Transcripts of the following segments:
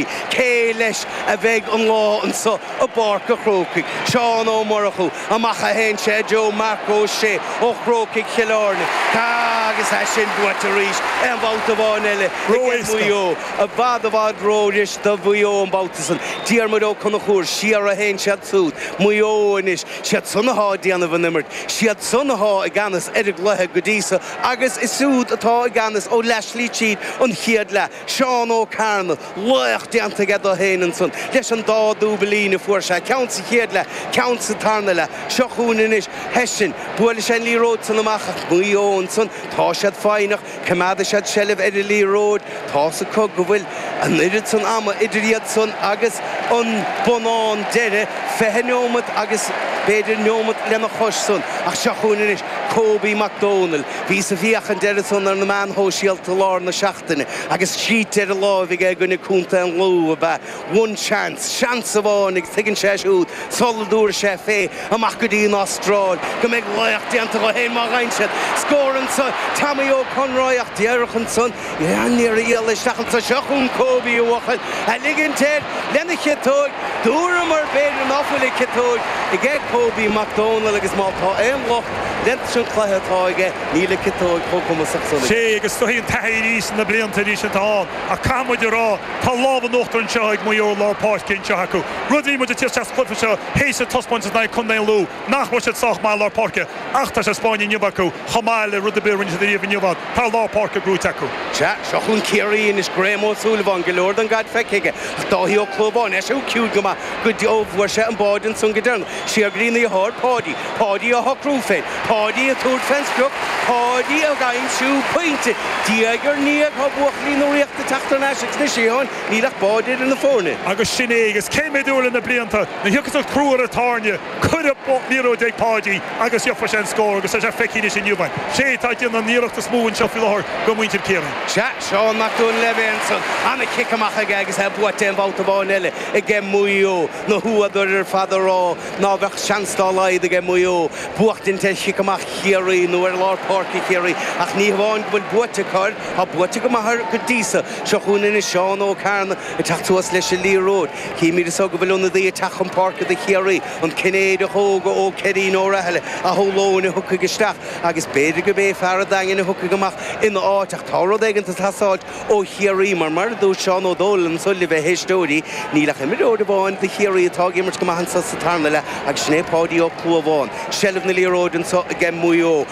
Cé leis a bheidh an lá anso i bPáirc a' Chrócaigh? Seán Ó Murchú, Amach a théann sé, i dtreo, Marc Ó Sé ó Chrócaigh Chill Airne, agus tá sin buaite arís. Aon bhabhta amháin eile aige Maigh Eo. I bhfad i bhfad rófhuirist do Mhaigh Eo an babhta san. Diarmuid Ó Conchúir, Siar a théann siad súd, Maigh Eo anois. Siad san athá ag déanamh an imirt. Siad san athá i gceannas ar an gcluiche go dtí so agus is iad atá i gceannas ó leathslí tríd an chéad leath. Seán Ó Cearna, laoch déanta aige dó fhéin ansan leis an dá dúiblín a fuair sé, ceann sa chéad leath, ceann sa tarna leath. Seo chugainn anois Hession. Buaileann sé an liathróid san amach ach Maigh Eo ansan, tá siad foighneach, coimeádfaidh siad seilbh ar an liathróid. Tá's acu go bhfuil an oiread san ama idir iadsan agus an bonnán deiridh, fiche neomat agus b'fhéidir neomat lena chois san. Ach seo chugainn anois Kobe Mac Domhnaill. Bhíos ag féachaint air ansan ar na meáin shóisialta i lár na seachtaine agus scríte ar a láimh aige i gcoinne Contae an Lú ab ea One chance, seans amháin, agus tuigeann sé siúd, sula dtabharfaidh sé fé amach go dtí an Astráil, go mbeidh laoch déanta dó fhéin má dheineann sé scór ansan. Tommy Ó Conroy ach díreach ansan. Níor éirigh leis é a sheachaint. Seo chugainn Kobe a bhuachaill a ligint air lena chiotóg, dúradh mar b'fhéidir nach bhfuil a chiotóg aige Kobe Mac Dónaill, agus má tá aon locht leis an chluiche atá aige, níl a chiotóg chomh cumasach san aige. Sea, agus tiocfaidh an taithí arís sna blianta arís atá ann, ach caithfidh muid a rá, tá lámh in uachtar anseo ag Maigh Eo i lár páirce anseo acu. Rud a shíl muid ag tíocht sa gcluiche seo th'éis an taispeántas in aghaidh Chontae an Lú, nach raibh siad sách maith lár páirce ach tá sé spáinte inniu acu chomh maith le rud ar bith a rinne siad ariamh inniu ann. Tá lár páirce gnóite acu. Sea, seo chugainn Ciarraí anois, Graham Ó Súilleabháin, go leor den gcaid feicthe aige, ach Dáithí Ó Clúmháin, eisean ciúin go maith go dtí go bhfuair sé an báide ansan go deireanach, siar go dtína dheartháir, Páidí, Páidí á shocrú féin, Páidí ag tabhairt fén sprioc, Páidí ag aimsiú pointe. Diaidh ar ndiaidh tá buachaillí na Ríochta ag teacht thar n-ais agus anois, a Sheáin, Níl ach báide idir na foirne. Agus sin é. Agus cé mhéad uair le na blianta nuair a thiocfas an crú ar an tairne, cuir an liathróid ag Páidí agus gheobhaidh sé an scór agus tá sé feicthe anois inniu. An té atá ag déanamh an iarracht is mó anseo faoi láthair de mhuintir Chiarraí. Sea, Seán Mac Dhoinnshléibhe ansan. Ana-chic amach aige agus é buaite aon bhabhta amháin eile aige Maigh Eo. Na húadair ar fad ag rá ná bheadh seans dá laghad aige Maigh Eo buachtaint ar chic amach Chiarraí nó ar lár páirce Chiarraí. Ach ní hamháin go bhfuil buaite acu air, tá buaite go maith air go dtí so. Seo chugainn anois Seán Ó Cearna ag teacht suas leis an liathróid. Chímíd anso go bhfuil ionadaí ag teacht chun páirce do Chiarraí, an Cinnéideach óg ó Céirín Ó Rathaille, a shamhlóinn a thiocfaidh isteach agus b'fhéidir gurb é fear an Daingin a thiocfaidh amach ina áit ach tá rud éigin ag teastáilt ó Chiarraí mar, mar a dúirt Seán Ó Domhnaill anso libh a éisteoirí, níl ach imreoir amháin do Chiarraí atá ag imirt go maith anso sa tarna leath agus sin é Páidí Ó Clúmháin. Seilbh na liathróide anso aige Maigh Eo.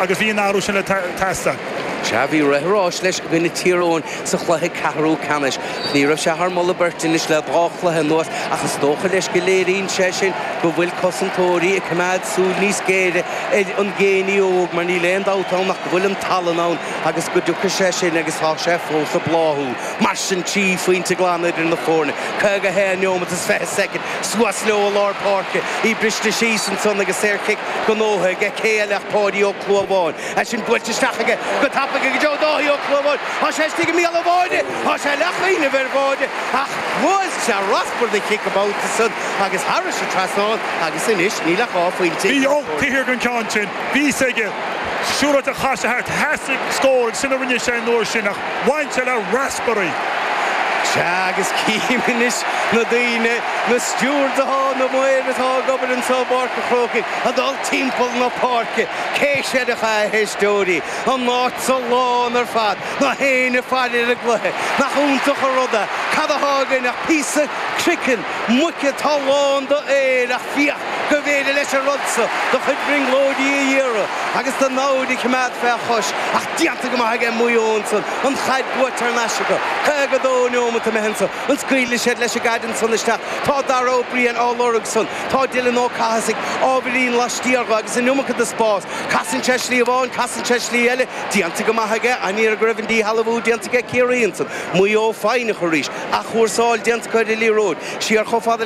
agus bhí an t-athrú sin le teastáil. Sea, bhí rith an ráis leis i gcoinne Tír Eoghain sa chluiche ceathrú ceannais, ach ní raibh sé thar moladh beirte anois le dhá chluiche anuas ach is dócha leis go léiríonn sé sin go bhfuil cosantóirí ag coimeád súil níos géire ar an Geaney óg mar níl aon dabht ann ach go bhfuil an tallann ann agus go dtiocfaidh sé sin agus tá sé fós ag bláthú. Mar sin trí phointe glan idir na foirne, 51 neomat is 20 soicind, suas leo i lár páirce, í briste síos ansan agus saorchic Gnóthaithe aige, Cé eile ach Páidí Ó Clúmháin. É sin buailte isteach aige go tapaidh aige go dtí Dáithí Ó Clúmháin. Tá sé istigh i mbéal an bháire. Tá sé le cuimhneamh ar bháide. Ach bhuail sé raspar de chic an babhta san agus thairis an trasnán agus anois níl ach dhá phointe eatarthu. Bhí an ceann sin aige. Bhí a fhios aige. Siúráilte chas sé thart. Theastaigh scór agus sin a rinne sé an uair sin ach bhain sé le Sudbury. Sea, agus cím anois na daoine, na stiúrdaithe, na maoir atá ag obair anso i bPáirc an Chrócaigh, ag dul timpeall na páirce, cé seireacha a heisteoirí, an áit so lán ar fad, gach éinne ag faire ar an gcluiche. Nach iontach an rud é. Cad atá againn ach píosa croiceann muice atá lán d'aer ach féach, go bhféidir leis an rud so do chuid brionglóidí a fhíoradh agus do namhaid a chimeád fé chois, ach déanta go maith aige Maigh Eo ansan. an chaid buaite ar ais acu, 52 neomat imithe anso an scaoilfidh siad leis an gcaid ansan isteach. Tá Dara Ó Briain á lorg san. Tá Dylan Ó Cathasaigh ábhairín laistiar dho agus an iomarca de spás. Casann sé slí amháin, casann sé slí eile. Déanta go maith aige, an-ghairid go raibh an díshealbhú déanta aige Ciarraí ansan. Maigh Eo foighneach arís. Athchúrsáil déanta acu ar an liathróid. Siar chomh fada